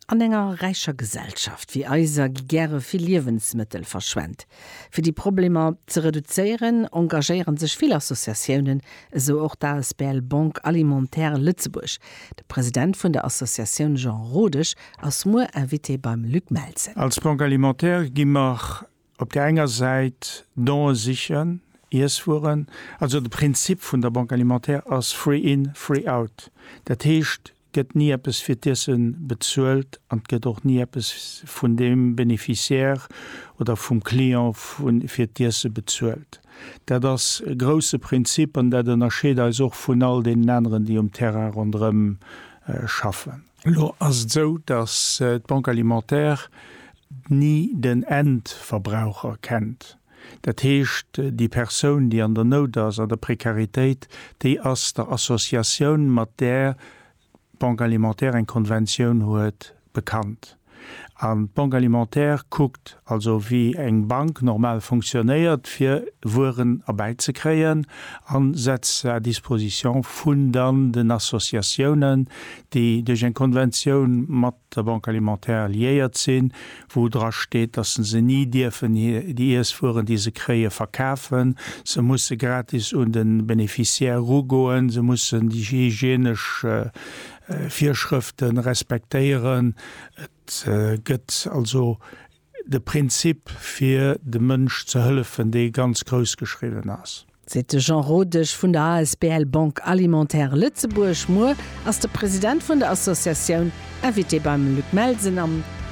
An enger räicher Gesellschaft wéi eiser gi gäre vill Liewensmëttel verschwent. Fir déi Problemer ze reduzéieren, engagéiere sech vill Associatiounen, esou och d'asbl Banque Alimentaire Lëtzebuerg. De President vun der Associatioun Jean Rodesch ass muer Invité beim Luc Melsen. Als Banque Alimentaire gi mer Op där enger Säit Done sichen, Iesswueren, also de Prinzip vun der Banque alimentaire ass free in, free out. Dat heescht, gëtt ni eppes fir d'Iesse bezuelt an et gëtt och ni eppes vun deem Beneficiaire oder vum Client fir d'Iesse bezuelt. Dat ass e grousse Prinzip an dat ënnerscheet eis och vun all deenen aneren, déi um Terrain ronderëm schaffen. Elo ass et esou, datt d'Banque alimentaire ni den Endverbraucher kennt. Dat heescht, déi Persoun, déi an der Nout ass, an der Prekaritéit, déi ass der Associatioun, mat där d'Banque alimentaire eng Konventioun huet, bekannt. An d'Banque alimentaire kuckt also, wéi eng Bank normal fonctionnéiert, fir Wueren erbäizekréien, a setzt se à disposition vun dann den Associatiounen, déi duerch eng Konventioun mat der Banque alimentaire liéiert sinn, wou dra steet, dass se se ni dierfen, déi Iesswueren, déi se kréien, verkafen. Se musse gratis un de Beneficiaire erugoen, se mussen déi hygienesch Virschrëfte respektéieren. Et gëtt also de Prinzip fir dem Mënsch ze hëllefen, dee ganz grouss geschriwwen ass. Seet de Jean Rodesch vun der asbl Banque Alimentaire Lëtzebuerg. Muer ass de President vun der Associatioun Invité beim Luc Melsen am.